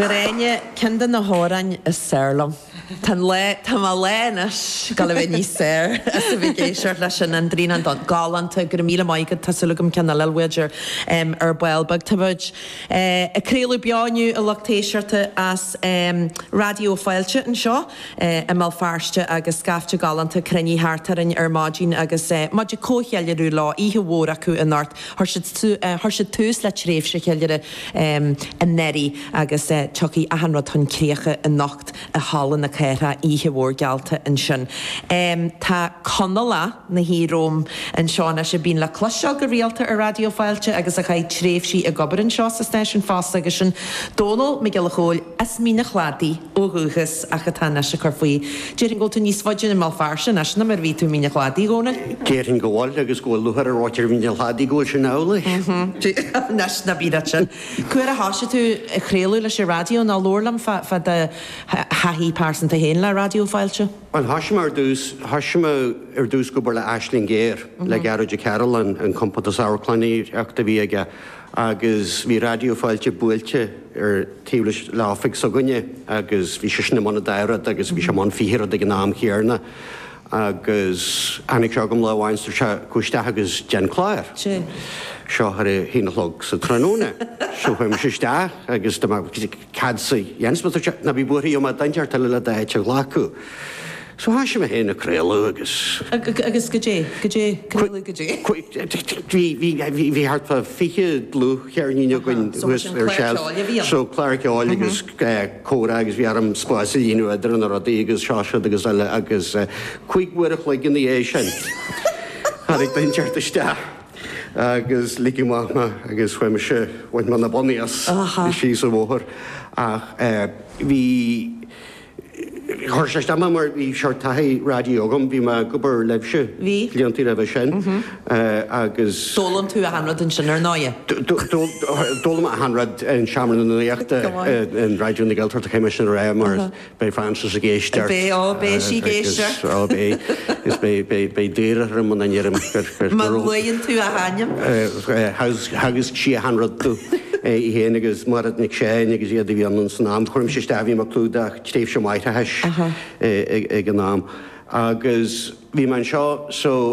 Gráinne, Ceann de na hamhráin is fearr liom. Tá an lá, tá mo lá anois, cúpla mí bheith ó shin ó bhí mé ag éisteacht leis an an dtrian an donn. Galánta, go raibh míle maith agat, tá súil agam ceann eile leat ar ball. Tá muid ag craoladh beo inniu a lucht éisteachta, as Raidió Fáilte anseo. i mBéal Feirste agus scaifte galánta cruinnithe thart orainn ar maidin agus muid ag comhcheiliúradh leo, oíche mhór acu anocht. Chuir siad tús le tréimhse cheiliúrtha anuraidh agus tiocfaidh achan rud chun críche anocht i Halla na Cathrach, oíche mhór geallta ansin. Tá duine ina shuí romham anseo anois a bhíonn le cloisteáil go rialta ar Raidió Fáilte agus a chaith tréimhsí ag obair anseo sa stáisiún fosta agus sin Dónall Mac Giolla Chóill, As Mín an Chladaigh ó dhúchas ach atá anois ag cur faoi. Déarfainn go bhfuil tú níos faide i mBéal Feirste anois ná mar a bhí tú i Mín an Chladaigh, a Dhónaill? Déarfainn go bhfuil, agus go bhfuil lúcháir ar áit ar Mhín an Chladaigh go bhfuil sin amhlaidh. Anois, ná bí mar sin. Cá huair a thosaigh tú ag craoladh leis an raidió? Nó labhair liom fá do thaithí pearsanta féin le Raidió Fáilte. Bhuel, thosaigh mé ar dtús, thosaigh mé ar dtús ag obair le Aisling Ghéar, le Gearóid Ó Cairealláin, an compántas amharclannaíochta a bhí aige, agus bhí Raidió Fáilte buailte ar taobh leis le oifig s'againne agus bhí seisean i mbun a dá rud agus bhí sé i mbun fiche rud ag an am chéanna agus tháinig sé chugam lá amháin agus dúirt sé Gabh isteach agus déan an clár seo ar a haon a chlog sa tráthnóna. So chuaigh mise isteach agus dúirt mé cad é a dhéanfas mé? Dúirt sé Ná bí buartha beidh mé ann tar éis tamaill le do áit a ghlacadh. So thoisigh mé féin ag craoladh agus. Agus goidé, goidé, craoladh goidé? Bhí thart fá fiche dlúthcheirnín againn thuas ar seilf, so cláir cheoil agus comhrá agus bhí orm spás a líonadh idir na rudaí agus seo, siúd agus eile agus cúig uair a chloig ina dhiaidh sin tháinig duine éigin isteach agus lig amach mé agus chuaigh mise, bhain mé na bonnaí as síos an bhóthar ach bhí. Chuir sé isteach mé mar bhí seort taithí raidió agam, bhí mé ag obair libhse blianta roimhe sin agus. D'fhoghlaim tú achan rud ansin ar ndóigh? D'fhoghlaim mé achan rud in Seomra na Nuachta in Raidió na Gaeltachta, caithfidh mé sin a rá mar beidh Frances ag éisteacht. Beidh, á beidh sí ag éisteacht. Á beidh, is beidh, beidh, beidh daor orm muna ndeirim gur. Má luaigheann tú a hainm. Theagasc sí achan rud domh í féin agus Máiréad Nic Seáin agus iad a bhí ann san am. Chuir sé isteach, bhí mé ag clúdach tréimhse máithreachais ag an am agus bhí mé anseo so